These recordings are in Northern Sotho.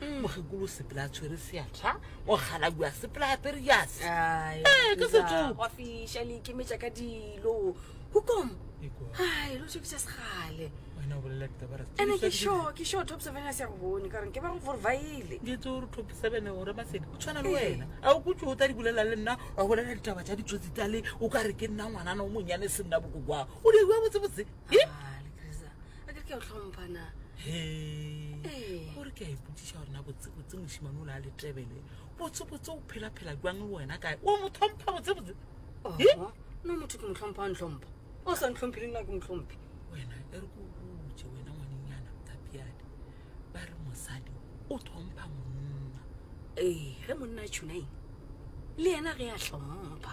Mm, mokgekolo o sepela a tshwere seatha o galabua sepela apere jase Ai, Eh, ke Mpiza, setopo. gwa fiša le ikemetša ka dilo hukom ai lo tšebisa segale wena o bolela ditabara ene ke sure ke sure top seven a se ya go bone ka reng ke ba go forvaile ke tse gore thopi sebene gore masedi o tshwana le Ee. wena a o kutse o tla di bolela le nna wa bolela ditaba tsa ditsotsi tale o ka re ke nna ngwanana o monnyane se nna bokokoa o di bua botsebotse e Ah, a ke re ke a o tlhompha na he Ee. gore ke a ipotsiša gore na botsebotse mošimane o le a letebele botsebotse o phelaphela jwang le wena kae o mo tlhompha botsebotse Oho, He? nna motho ke motlhompha wa ntlhompha o sa ntlhomphe le nna ke motlhomphe wena e re ko botse wena ngwanenyana tapiane ba re mosadi o tlhompha monna ee ge monna a tšhuna eng le yena ge a tlhompha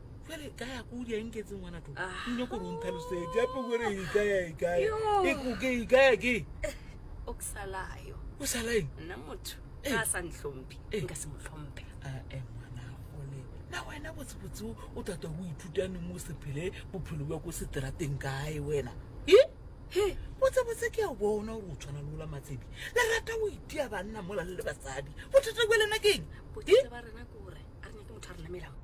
jale ka ya ko di anketse ngwana to ah. o nyako rong tlhalosetse ape kore e ka ya e ka ya e koke e ka ya ke eh, o ke salayo o salayo nna motho eh. ka sa ntlhomphe eh. nka se mo tlhomphe a e ngwana gole na wena botse botse o tata go ithutane mo se phele bophelo bja ko se trateng kae wena e he botse botse ke ya bona gore o tshwana le ola matsebi le rata o itia banna mola le le basadi bothata ko lena keng bothata ba rena ke gore a re nyake motho a rena melao